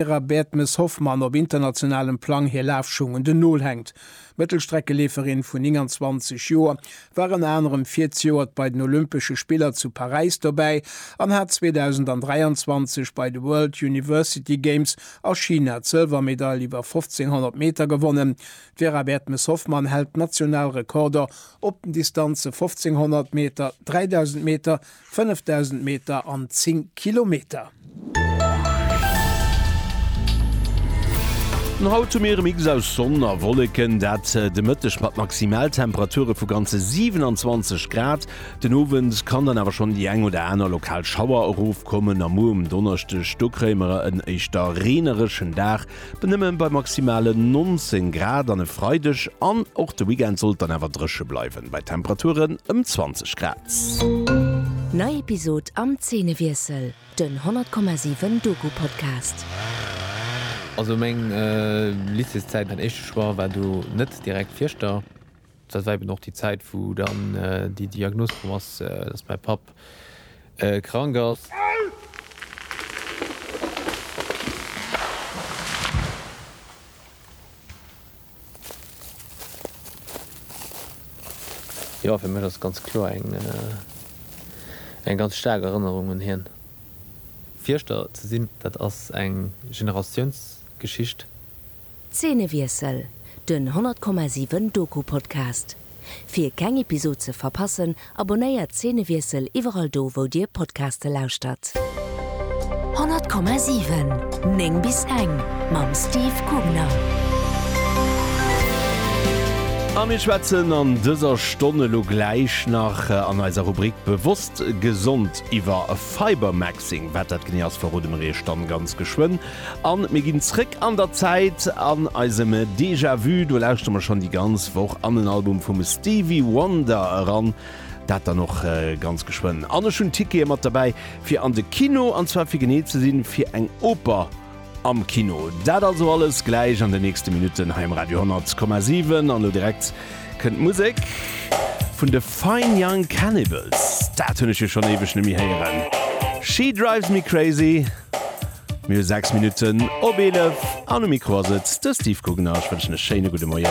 Vera Baertmes-Hoffmann op internationalem Plang hir Lafschung un den Nol hänkt. D'Mëttelstreckeleeferin vun 29 Joer war ënner anerem virzejoert bei den Olympesche Spiller zu Paräis dobäi an hat 2023 bei de World University Games a China d'Sëlwermedail iwwer 1500 Meter gewonnen. D'Vera Baertmes-Hoffmann hält national Rekorder op den Distanze 1500 Meter, 3000 Meter 5.000 Meter an 10 Kilometer. An haut hu mir e Mix aus Sonn a Wolleken, dat de Mëtteg mat Maximaltemperature vu ganze 27 Grad. Den Owend kann dann awer schonn déi eng oder aner lokal Schauer erofkommen a muer um Donneschdeg, do kréie mer en éischter reenereschen Dag. Mee nëmmen bei maximalen 19 Grad an e Freideg an och de Weekend sollt dann awer drëche bleiwen, bei Temperaturen ëm 20 Grad. Nei Episod am Zeenewiessel, den 100,7 Doku-Podcast. Also meng Lycéeszäit, mäin éischte Choix war do net direkt Fieschter. Dat war eben och déi Zäit, wou dann déi Diagnos komm ass, dass mäi Papp krank ass. Jo, fir mech ass ganz kloer eng ganz staark Erënnerung un hien. Fierschter ze sinn, dat ass eng Generatiounsgeschicht. Zeenewiessel, den 100,7 Doku-Podcast. Fir keng Episod ze verpassen, abonnéiert Zeenewiessel iwwerall do wou dir Podcaste lauschtert. 100,7 9 bis eng mam Steve Kugner. A mir schwätzen an dëser Stonn elo gläich nach an eiser Rubrik Bewosst Gesond iwwer Fibermaxing. Wat dat genee ass, verrode mer iech dann ganz geschwënn. An mir ginn zréck an der Zäit, an eisem Déjà Vu, do lauschtere mer schonn déi ganz Woch an en Album vum Stevie Wonder eran, dat dann och ganz geschwënn. An ech hunn Tickete mat derbäi fir an de Kino, an zwar fir genee ze sinn, fir eng Oper am Kino. Dat also alles gläich an den nächste Minutten hei um Radio 10,7. An elo direkt kënnt d'Musek vun de Fine Young Cannibals, dat hunn ech jo schonn éiweg nemme héieren, She Drives Me Crazy. Mir hu 6 Minutten op 11 an um Mikro ass et de Steve Guggenau. Ech wënschen e schéine gudde Moien.